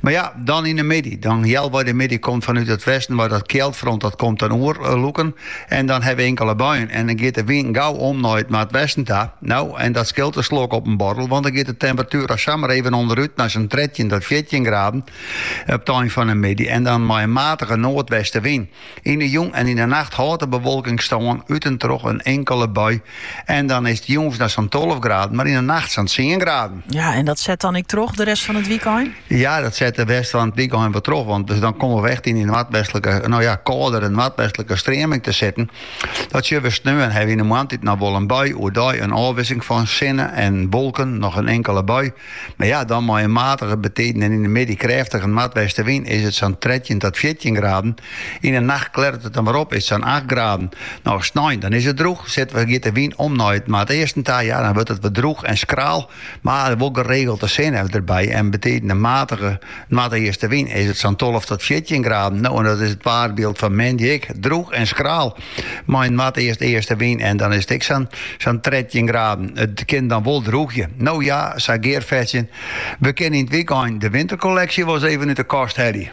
Mar ja, dan yn de middei. Dan healwei de middei komt fanút it westen mei dat kjildfront dat komt dan oer eh, lûken. En dan ha we inkele buien. En dan giet de wyn gau om nei it noardwesten ta. No, en dat skilt in slok op in boarrel, want dan giet de temperatuer al samar even ûnderút nei sa'n trettjin tot fjirtjin graden op 't ein fan de middei. En dan mei in matige noardwestewyn. Yn 'e jûn en yn 'e nacht hâldt de bewolking stân, út en troch in inkele bui. En dan is it jûns noch sa'n tolve graden, mar yn 'e nacht sa'n tsien graden. Ja, en dat set dan ek troch de rest fan it wykein? Ja, dat set de rest fan it wykein wol troch, want dus dan komme we echt yn in noardwestlike, no ja, kâldere noardwestlike streaming te sitten. Dat sjogge we sneon ha we yn 'e moarntiid noch wol in bui, oerdei in ôfwisseling fan sinne en wolken, noch in inkele bui. Mar ja, dan mei in matige betiden en yn de middei krêftige noardwestewyn is it sa'n trettjin tot fjirtjin graden. Yn de nacht klêret it dan wer op, is it sa'n acht graden. No, snein, dan is it drûch, sit we giet de wyn om nei it noardeasten ta, ja, dan wurdt it wer drûch en skraal, mar wol geregeld de sinne derby en by tiden in matige Noardeastewyn is it sa'n tolve tot fjirtjin graden. No, en dat is it waarbyld fan moandei ek. Drûch en skraal mei in noardeast-eastewyn en dan is it ek sa'n trettjin graden. It kin dan wol drûgje. No ja, sa gearfetsjend, we kinne yn it wykein de winterkolleksje wol ris even út de kast helje.